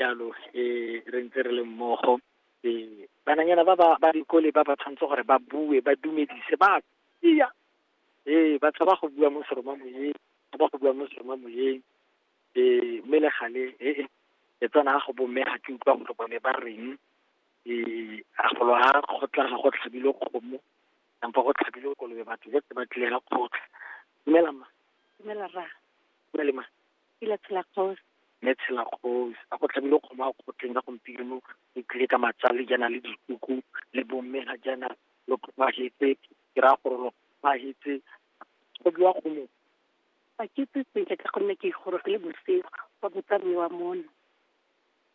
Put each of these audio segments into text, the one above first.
jalo eh re ntse re le mmogo eh bananyana ba ba ba dikole ba ba tshwanetse gore ba bue ba dumedise ba iya eh ba tshaba go bua mo seroma moyeng ba ba go bua mo seroma moyeng eh mme le gale eh e tsana go bomme ga ke utlwa gore bone ba reng eh a golo a go tla ga go tlhabile kgomo kampo go tlhabile kolobe batho ba ba tlile ga kgotla dumela ma dumela ra dumela ma ke la tshela kgaosi. Mme tshela kgosi, a go tlhabile kgomo a kgotleng ka gompieno, e tlile ka matsale jaana le dikuku, le bomme ga jaana lo tlhomagetse, ke raya gore lo tlhomagetse, go biwa kgomo. A ke itse sentle ka gonne ke gorogile bosigo, ba botsa mme wa mono.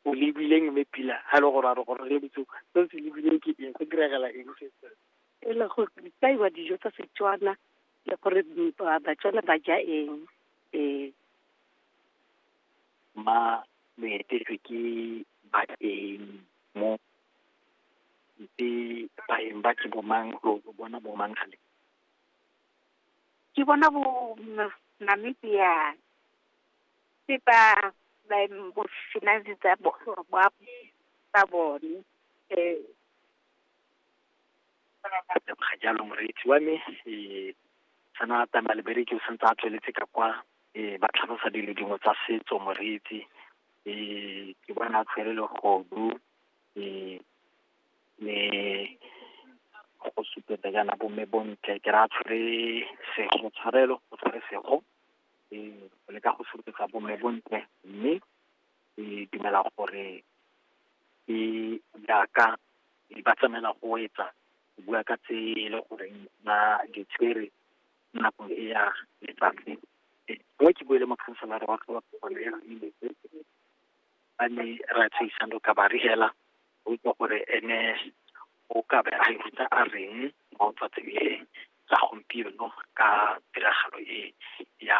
O lebileng mme Pila, ha e le gore a re gorogile bosigo, se o se lebileng ke eng, go diragala eng se? E le gore di kaiwa dijo tsa Setswana, le gore Batswana ba ja eng. e ma lo etetswe ke baeng mo ntse baeng ba ke bomang lo lo bona bomang gale ke bona bo m- Namibia ke ba ba bo sena di tsa bo ba tsa bone . a teboga jalo moreetsi wa me um sana tama lebereke o santse a tsweletse ka kwa um ba tlhalosa dilo dingwe tsa setso moreetsi um ke bona a tshwere legodu um le go supetsa jaana bomme bontle ke ra tshwere sego tshwarelo o tshwere sego um o leka go supetsa bomme bontle mme ke dumela gore ke jaaka ba tsamaela go etsa go bua ka tse e le gore ba di tshwere nako e ya letsatsi mo ke buele mokhanselara wa tlhobapholo ya mmetse a ne ra tsheisano ka ba re hela o itse gore ene o ka be a itse a reng mo tsatsing le la gompieno ka tiragalo e ya